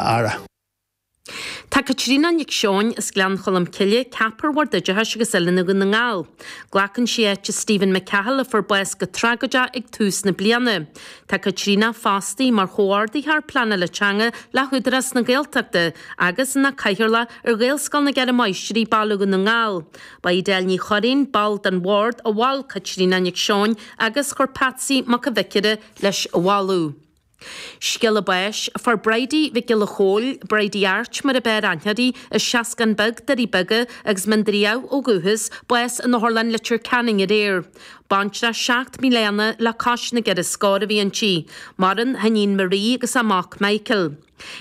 aire. Tá Caitríona Nic Seoin as Gleann Cholm Cille ceaptha ar Bhord Oideachais agus Oiliúna Dhún na nGall. Glacann sí áit Stephen McCahill a fuair bás go tragóideach ag tús na bliana. Tá Caitríona fostaí mar Chomhordaitheoir Pleanála Teanga le hÚdarás na Gaeltachta agus ina Cathaoirleach ar Ghaelscoil na gCeithre Máistrí, Baile Dhún na nGall. Ba í Edel Ní Chorráin, ball den Bhord, a mhol Caitríona Nic Seoin agus chuir Patsy Mac an Bhiocáire leis an mholadh. Scéala báis, Fuair Bridie Mhic Giolla Chomhaill, Bridie Airt mar ab fhearr aithne uirthi, as Seascann Beag, Doirí Beaga, agus Mín Doire Dhamh ó dhúchas, bás in Otharlann Leitir Ceanainn aréir. Baintreach seacht mbliana le cois na gceithre scór a bhí inti. Maireann a hiníon Marie agus a mac Michael.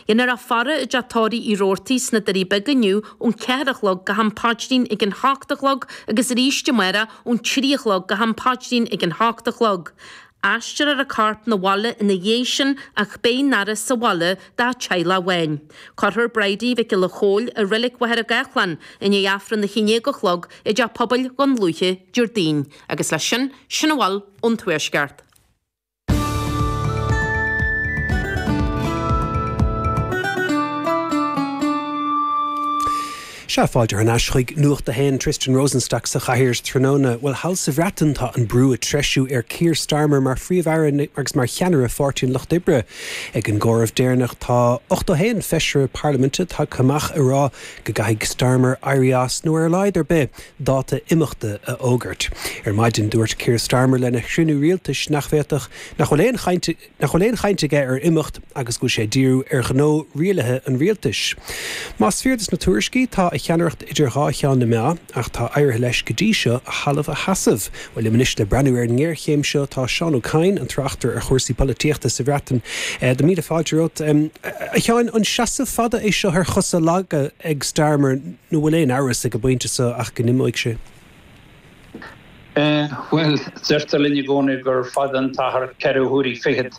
Déanfar a faire i dteach tórraimh Uí Rabhartaigh sna Doirí Beaga inniu ón cheathair a chlog go ham paidrín ag an hocht a chlog agus arís amárach ón trí a chlog go ham paidrín ag an hocht a chlog. Aistreofar a corp 'na bhaile ina dhiaidh sin ach beidh an fhaire sa bhaile dá teaghlach amháin. Cuirfear Bridie Mhic Giolla Chomhaill i reilig Mhachaire Gathlán i ndiaidh Aifreann na haon déag a chlog i dteach pobail Dhún Lúiche, Déardaoin, agus leis sin, sin a bhfuil ón Tuaisceart. Sea, fáilte thar n-ais chuig Nuacht a hAon, Tristan Rosenstock sa chathaoir tráthnóna. Bhuel, thall sa Bhreatain tá an brú ag treisiú ar Keir Starmer mar Phríomh-Aire agus mar cheannaire Pháirtí an Lucht Oibre. Ag an gcomhaireamh deireanach tá 81 feisire parlaiminte tagtha amach ag rá go gcaithfidh Starmer éirí as nó ar a laghad ar bith, dáta imeachta a fhógairt. Ar maidin dúirt Keir Starmer lena chruinniú rialtais nach bhféadfadh, nach bhfuil aon chaint, nach bhfuil aon chaint aige ar imeacht agus go bhfuil sé ag díriú ar ghnó rialaithe an rialtais. Más fíor dos na tuairiscí, tá a cheannaireacht idir dhá cheann na meá, ach tá éirithe leis, go dtí seo, a thalamh a sheasamh. Bhuel, liom anois le breathnú ar an ngéarchéim seo. Tá Seán Ó Cadhain, an tráchtaire ar chúrsaí polaitíochta sa Bhreatain, tá míle fáilte romhat. A Sheáin, an seasamh fada é seo ar chosa laga ag Starmer nó bhfuil aon amhras ag an bpointe seo ach go n-imeoidh sé? Bhuel, deirtear linn i gcónaí gur fada an t-achar ceithre huaire fichead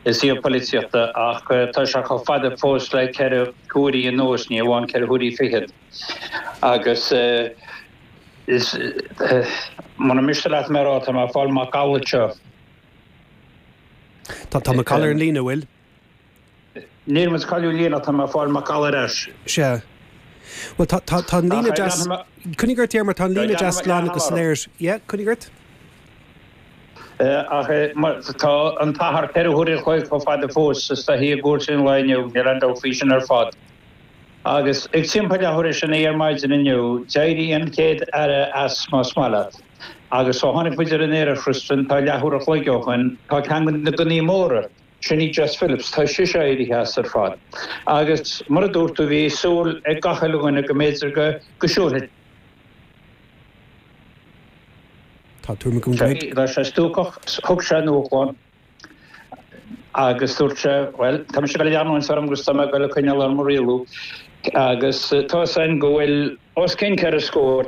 i suíomh polaitíochta, ach tá sé chomh fada fós le ceithre huaire anuas, ní hamháin ceithre huaire fichead. Agus muna miste leat mé á rá, tá mé ag fáil macalla anseo. Tá macalla ar an líne, an bhfuil? Níl muid ag cailliúint líne ach tá mé ag fáil macalla ar ais. Sea. Bhuel, tá, tá, tá an líne deas, coinnigh ort, tá an líne deas glan agus soiléir. Yeah, coinnigh ort. Eh, ach eh, mar, tá an t-achar ceithre huaire a chloig chomh fada fós, is tá thíos i gcúrsaí an lae inniu, níl aon dabht faoi sin ar fad. Agus ag timpeall leathuair tar éis a naoi ar maidin inniu, d'éirigh an chéad Aire as, más maith leat. Agus ó tháinig muid ar an aer, a Tristan, tá leathuair a chloig ó shin, tá ceann de na gunnaí móra, Sin í Jess Phillips, tá sise éirithe as ar fad. Agus mar a dúirt tú, bhí súil ag gach uile dhuine go mb'fhéidir go siúlfadh Tá tuairim agam go mbeidh. Bheadh sé stuacach. Thug sé a ndúshlán agus dúirt sé, bhuel, tá mise ag goil i gceann an airm agus tá mé ag goil ag coinneáil orm ag rialú. Agus tá 'fhios a'inn go bhfuil os cionn ceithre scór,